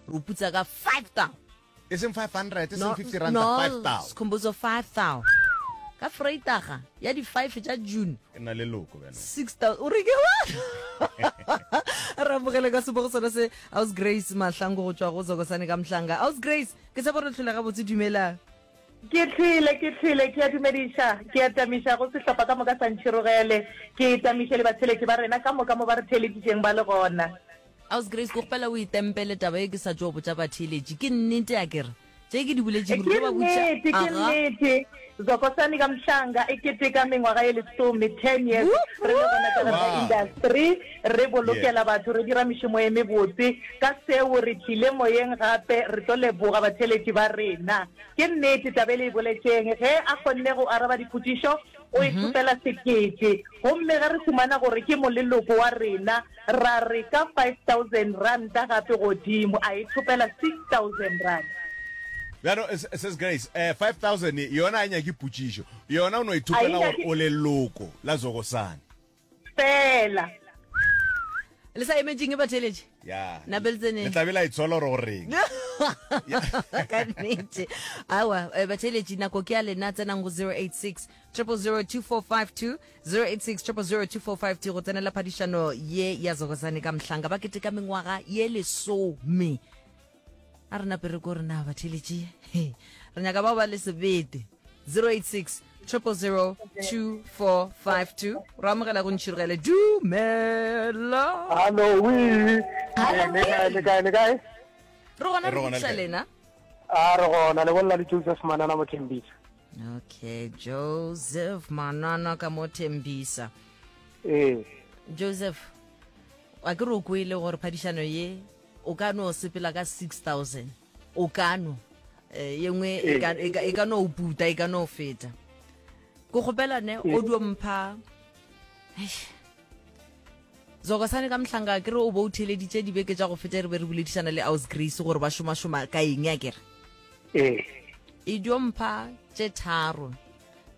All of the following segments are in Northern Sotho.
re o putsa ka five thou e seng 500 e seng 50 ranta 5 thou sekhombozo five thou ka freitaga ya di-five tša june ke na le loko bjana six thou o reke wa re amogele ka sebogo sona se aus grace mahlango go tšwa go zokosane ka mohlanga aus grace ke tshepo re tlholega botse dumelang ke tlile ke tlile ke a dumediša ke a tamiša go sehlopha ka moka sa ntšhirogele ke tamiše le batheletši ba rena ka moka mo ba re theeleditšeng ba le gona aus grace ko gopela o itempele taba e ke sa tšo botša batheeletši ke nnete a kere tše ke di buletšeng ke nnete ke nnete zokosani ka mhlanga e keteka mengwaga e lesome ten years re le gona ka industry Re bolokela batho, re dira mešomo e mebotse. Ka seo re tlile moyeng gape, re tlo leboga batheeletši ba rena. Ke nnete, taba e le e boletšeng. Ge a kgonne go araba dipotšišo, o e thopela sekete. Gomme ge re humana gore ke moleloko wa rena, ra re ka five thousand ranta gape godimo, a e thopela six thousand ranta. Bjalo, Ses Grace, eh, five thousand ye, yona ga e nyake potšišo. Yona o no e thopela gore o leloko la Zogosane. fela le sa emetseng e batheletše ya Nabel Tseneng. le tlabe la itsola gore o reng ka nnete awa eh, batheletši nako ke ya lena tsenang go 086 002452 086 002452 go tsenela phadišano ye ya zogozane ka mohlanga ba keteka mengwaga ye lesome a re napere ko rena batheletši re nyaka bao ba le sebete 086 000 2452 ra amogela go ntšhirogele dumela hallo wi le kae le kae re gona re thusa lena a re gona le bolela le joseph manana mo thembisa okay joseph manana ka mo thembisa ee joseph a ke re o kwele gore phadišano ye O ka no sepela ka 6000. O ka no eh, ye nngwe e ka- e ka- e ka no o puta, e ka no o feta. Ko kgopela ne o dio mpha Eish. zokosane ka mohlanga ke re o bo o theleditše dibeke tša go feta re be re boledišana le aus grace gore ba šomašoma ka eng ya kere ee e dio mpha tše tharo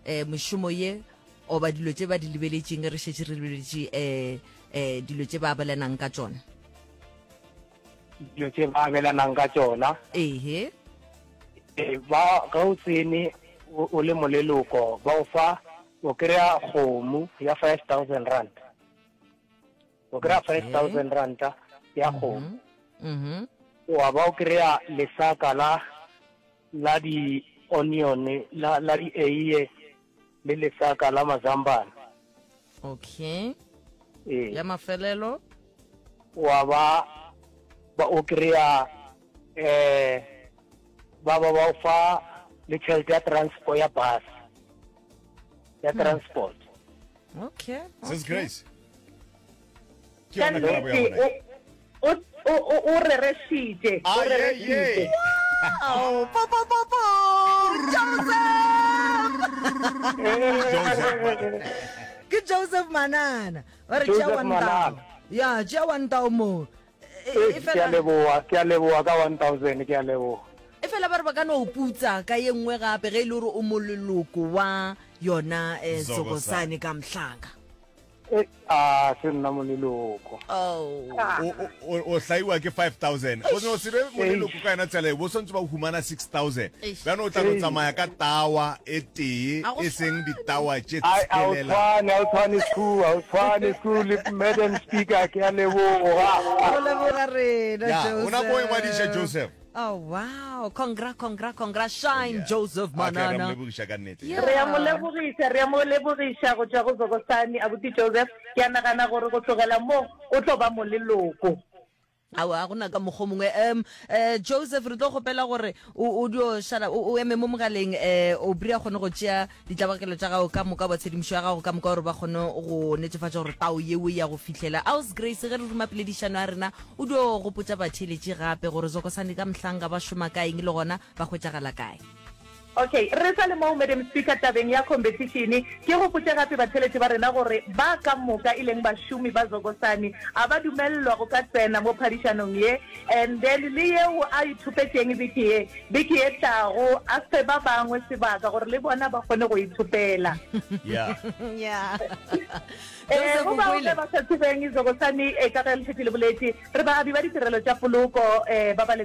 um mešomo ye oba dilo tše ba di lebeletšeng re šetše re lebeletše um um dilo tše ba bolenang ka tšona dilo tse ba abelanang ka tsona ehe eh, ba ga o tsene o le moleloko ba o fa o kry-a kgomo ya five thousand rand o kry-a five thousand ranta ya mhm. kgomo mhm. wa ba o kry-a lesaka la la di-onion la di-eiye le lesaka la mazambana okay ee ya mafelelo wa ba ba o kry-a um ba ba ba o fa le tšhelete ya transport ya bus ya transport okay Sis okay Grace, ke yona karabo ya bona o rerešitše o rerešitše ke joseph manana ba re tšea wantao ya tšea wantao moo e fela ke a leboa ka 1000 ke a leboa e fela ba re ba ka no putsa ka ye nngwe gape ge e le gore o moleloko wa yona um sokosane ka mohlaka Eh, a se nna moneloko Oh. o o- o- o hlaiwa ke 5000 go se o sebe moneloko ka yona tsela e bo swantse ba o humana 6000 Eish. bjano o tla no tsamaya ka tawa e tee A go e seng ditawa tše a a o tshelela tshwane a o tshwane sku a o tshwane sku le madam speaker ke a leboga Go leboga rena, ya o na ko Joseph. ingwadiša joseph Oh, wow. Congra, congra, congra. Shine, yeah. Joseph Okay, ra Manana. mlebogiša ka nnete. Yeah. re a mo lebogiša re a mo lebogiša go tšwa go zokosane abuti joseph ke a nagana gore go tlogela moo o tlo ba mo leloko awa go na ka mokgwa o mongwe um um joseph re tlo kgopela gore o o dio šala o o eme mo mogaleng um o bria kgone go tšea ditlabakelo tša gago ka moka ba tshedimošo ya gago ka moka gore ba kgone go netefatša gore tao yeo ya go fihlela aus grace ge re ruma peledišano ya rena o dio gopotsa batheeletši gape gore zokosane ka mohlanga ba šoma ka eng le gona ba hwetšagala kae okay re sa le moo madam speaker tabeng ya competition ke gopotse gape batheeletši ba rena gore ba ka moka e leng bašomi ba zokosane a ba dumelelwa go ka tsena mo phadišanong ye And then le yeo a ithopetšeng beke ye, beke ye tlago a fe ba bangwe sebaka gore le bona ba kgone go ithopela. Yeah. Yeah. Eh, Joseph go bao Mokwele. ge ba sa tsebeng izokosani eh, ka ge lefeti le boletše re baabi ba ditirelo tša poloko eh, ba ba leng